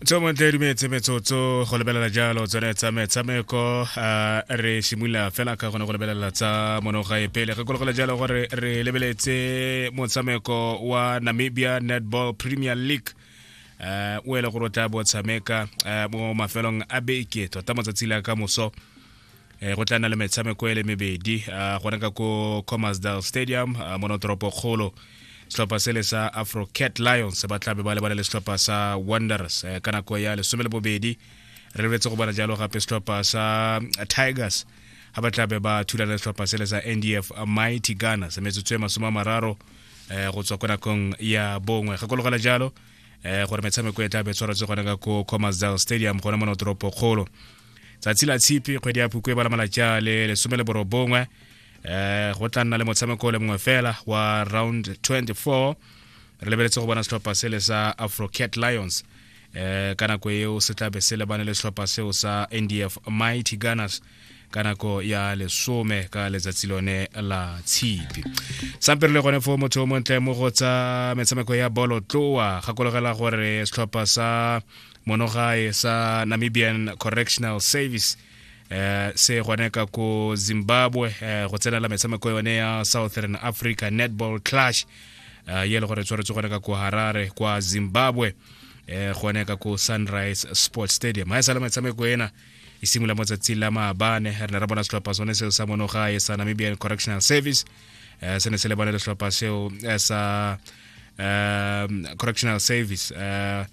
tso montle di metse metsotso go lebelela jalo tsone tsa metshameko a re simolola fela ka gone go lebelela tsa monogae pele re kologela jalo gore re lebeletse motshameko wa namibia netball premier league uh, o e le gore o tla bo tshameka uh, mo mafelong a beke tota matsatsi le a ka moso eh, go tla na le metshameko e le mebedi uh, gone ka ko commersdal stadium uh, mono toropokgolo setlhopha sele sa afro cat lions ba tlabe ba lebane le setlhopha sa wonders eh, ka nako ya lesome le bobedi re lebetse go bona jalo gape setlhopha sa tigers ga ba tlabe ba thulana le setlhopha sele sa ndf mighty ghana se metsotso e masome a mararo eh, go tswa ko nakong ya bongwe gakologela jalo eh, gore metshameko e tlabe tshwaretse gone ka ko commersdal stadium gone mo notoropo kgolo tsatsi la tshipi kgwedi ya phukwe ba la malatsi a le lesome le borobongwe eh go tla nna le motshameko le mongwe fela wa round 24 re lebeletse go bona setlhopha sele sa afrocat lions eh ka nako eo se tlabe se lebane le setlhopha seo sa ndf mighty gunners ka nako ya lesome ka letsatsi lone la tshipi sampe re le gone fo motho o montle mo go tsa metshameko ya bolo tloa gakologela gore setlhopha sa monogae sa namibian correctional service eh, se gone ka ko zimbabwe eh, go tsenela metshameko yone ya southern africa netball clash eh, ye e le gore tshwaretse gone ka ko harare kwa zimbabwe eh, gone ka ko sunrise sports stadium ga e sale metshameko ena e simolola mo tsatsing la maabane re ne ra bona setlhopha sone seo sa monogae sa namibian correctional service eh, se ne se lebane le setlhopha seo eh, sa eh, correctional service eh,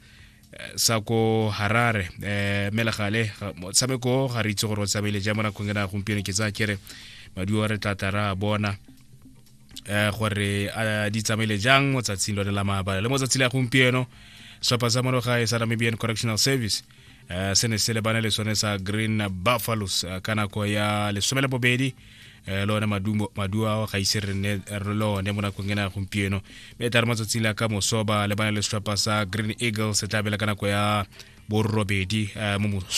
eh, sa ko harare um eh, melegale motshameko ga re itse gore o tsamaile ja mo nakong e na gompieno ke tsaya kere maduo re tla tara bona um gore a di tsamaile jang mo tsatsing lone la maabala le mo tsatsi la gompieno setlhopha sa monogae sa namibian correctional service um se ne se lebane le sone sa green buffaloes ka nako ya lesome le bobedi um le one maduo ao ga ise re ne re le one mo nakong ena ya gompieno mme tla re matsatsing la ka mosoba le bana le setlhopha sa green eagles se tla bela ka nako ya borobedi um mo moso